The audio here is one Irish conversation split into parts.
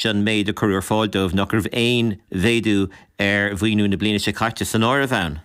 Seo an méid a cuireadh ar fáil dóibh, nach raibh aon mhéadú ar mhaoiniú na bliana seo caite san áireamh ann.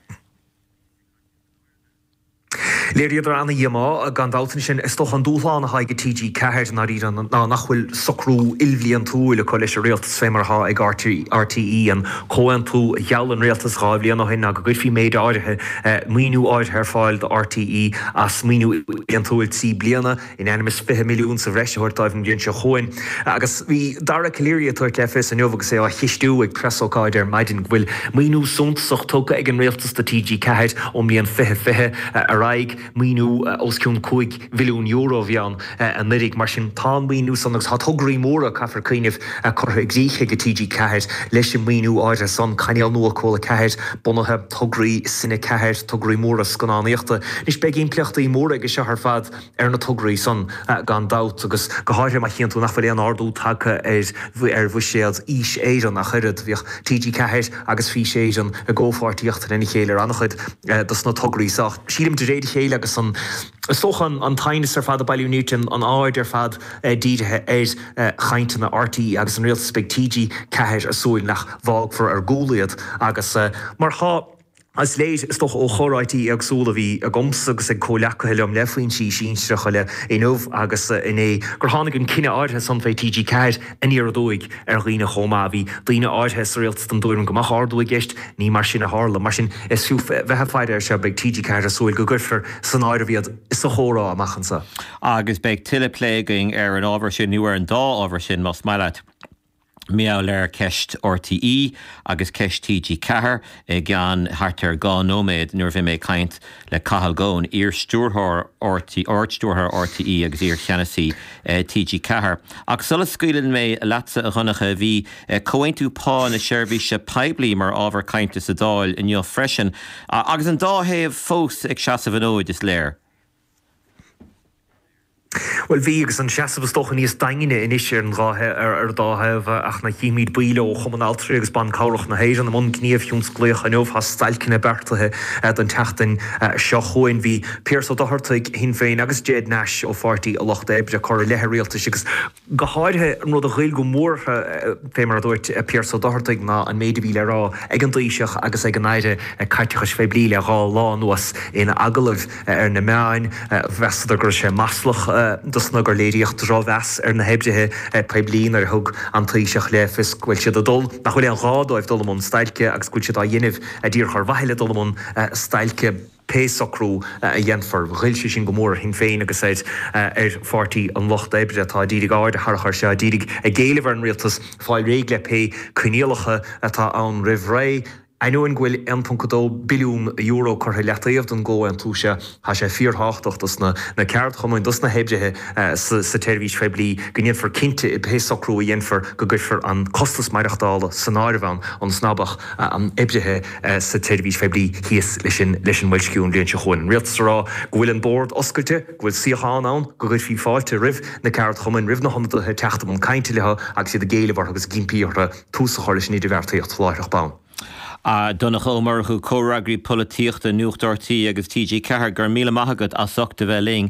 Léiríodar ana-dhíomá, gan dabht, ansin is dócha an dúshlán atá aige TG4 ná nach bhfuil socrú ilbhliantúil acu leis an Rialtas fé mar atá ag RTÉ, an comhaontú a gheall an Rialtas dhá bhliain ó shin go gcuirfí méid áirithe maoiniú áirithe ar fáil do RTÉ as maoiniú ilbhliantúil trí bliana. in ainm is fiche milliún sa bhreis a thabhairt dóibh an bhliain seo chugainn agus bhí Dara Calleary ag tabhairt le fios inniu agus é á cheistiú ag preasócáid ar maidin go bhfuil maoiniú suntasach tugtha ag an Rialtas do TG4 ón mbliain fiche fiche ar aghaidh, maoiniú os cionn cúig milliún euro a bhí ann anuiridh, mar sin tá an maoiniú san agus tá tograí móra, caithfear cuimhneamh, curtha i gcrích aige TG4 leis an maoiniú áirithe san, cainéal nua Cúla 4 bunaithe, tograí Cine 4, tograí móra scannánaíochta. Anois beidh impleachtaí móra aige seo ar fad. ar na tograí san gan dabht, agus go háirithe má chíonn tú nach bhfuil aon ardú tagtha ar bhuiséad Fhís Éireann ach oiread. Bhíodh TG4 agus Fís Éireann i gcomhpháirtíocht lena chéile ar an-chuid dos na tograí so ach sílim de réir a chéile agus an, is dócha, an t-aighneas ar fad ag bailiú nirt, an aird ar fad dírithe ar chainteanna RTÉ agus an Rialtas. Beidh TG4 ag súil nach bhfágfar ar gcúl iad agus mar atá, Is léir, is dócha, ó chomhráití éagsúla a bhí agamsa agus ag comhleacaithe liom le foinsí sinsearacha idir inniu agus inné gur tháinig an cinneadh áirithe san fé TG4 aniar aduaidh ar dhaoine chomh maith. Bhí daoine áirithe sa Rialtas den dtuairim go mbeadh ardú i gceist. Ní mar sin a tharla. Mar sin, is fiú bheith ag faire air seo. Beidh TG4 ag súil go gcuirfear san áireamh iad sa chomhrá amach anseo. Agus beidh tuilleadh plé againn ar an ábhar sin nó ar an dá ábhar sin más maith leat. Mar atá ceist RTÉ agus ceist TG4 i gceann thart ar dhá nóiméad nuair a bheidh mé ag caint le Cathal Goan, iar-Stiúrthóir RTÉ, Ard-Stiúrthóir RTÉ agus iar-Cheannasaí TG4. Ach sula scaoileann mé leatsa, a Dhonncha, bhí comhaontú pá na seirbhíse poiblí mar ábhar cainte sa Dáil inniu freisin. Agus an dá thaobh fós ag seasamh an fhóid, is léir. Bhuel, bhí, agus an seasamh is dócha níos daingne anois ar an dá thaobh agus címid baill ó Chumann Altraí agus Ban Cabhrach na hÉireann i mbun gníomh thionsclaíoch inniu. Tá stailceanna beartaithe don tseachtain seo chugainn. Bhí Pearse Ó Dochartaigh, ó Shinn Féin, agus Ged Nash ó Pháirtí an Lucht Oibre ag cur i leith an Rialtais agus. go háirithe, an rud a ghoill go mór orthu, fé mar a dúirt Pearse O Dochartaigh, ná an méid a bhí le rá ag an dTaoiseach agus ag an Aire Caiteachais Phoiblí le dhá lá anuas in agallaimh ar na meáin. Mheasadar go raibh sé maslach dóibh is gur léiríodh drochmheas ar na hoibrithe poiblí nuair a thug an Taoiseach le fios go bhfuil siad ag dul, nach bhfuil aon ghá dóibh dul i mbun stailce agus go bhfuil siad á dhéanamh díreach ar mhaithe le dul i mbun stailce. pé socrú a dhéanfar. Ghoill sé sin go mór ar Shinn Féin agus ar Pháirtí an Lucht Oibre atá ag iarraidh aird a tharrach air seo, ag iarraidh ag éileamh ar an Rialtas fáil réidh le pé coinníollacha atá ann roimh ré. Ainneoin go bhfuil €1.2 billiún curtha i leataobh don gcomhaontú seo, tá sé fíortháchtach dos na ceardchumainn, dos na hoibrithe sa tseirbhís phoiblí go ndéanfar cinnte i bpé socrú a dhéanfar go gcuirfear an costas maireachtála san áireamh ann, ionas ná beadh oibrithe sa tseirbhís phoiblí thíos leis sin leis an mboilsciú an bhliain seo chugainn. An Rialtas á rá go bhfuil an Bord oscailte, go bhfuil suíochán ann, go gcuirfí fáilte roimh na ceardchumainn, roimh na hionadaithe teacht i mbun cainte leo agus iad ag éileamh orthu agus ag impí orthu tús a chur leis an idirbheartaíocht láithreach bonn. Donncha Ó Murchú, Comhfhreagraí Polaitíochta, Nuacht RTÉ agus TG4, go raibh míle maith agat as ucht a bheith linn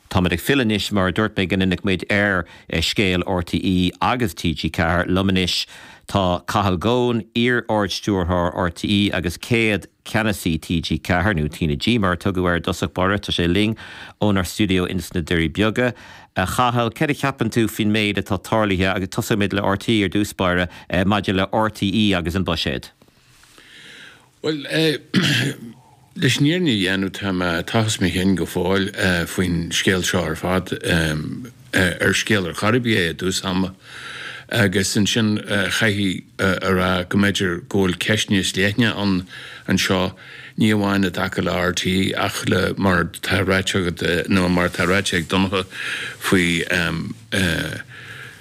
Táimid ag filleadh anois mar a dúirt mé go ndéanfadh muid ar scéal RTÉ agus TG4 liom anois. Tá Cathal Goan, iar-Ard-Stiúrthóir RTÉ agus céad Ceannasaí TG4, nó TnaG mar a tugadh air i dtosach báire, tá sé linn ónár stiúideo ins na Doirí Beaga. A Chathail, céard a cheapann tú faoin méid atá tarlaithe agus tosóidh muid le RTÉ ar dtús báire maidir le RTÉ agus an buiséad? Bhuel, leis an fhírinne a dhéanamh, tá mé ag tochas mo chinn go fóill faoin scéal seo ar fad. Ar scéal ar chor ar bith é i dtús ama, agus ansin chaithfí a rá go mb'fhéidir go bhfuil ceist níos leithne ann anseo, ní amháin i dtaca le RTÉ ach le mar atá ráite agat, nó mar atá ráite ag Donncha faoi,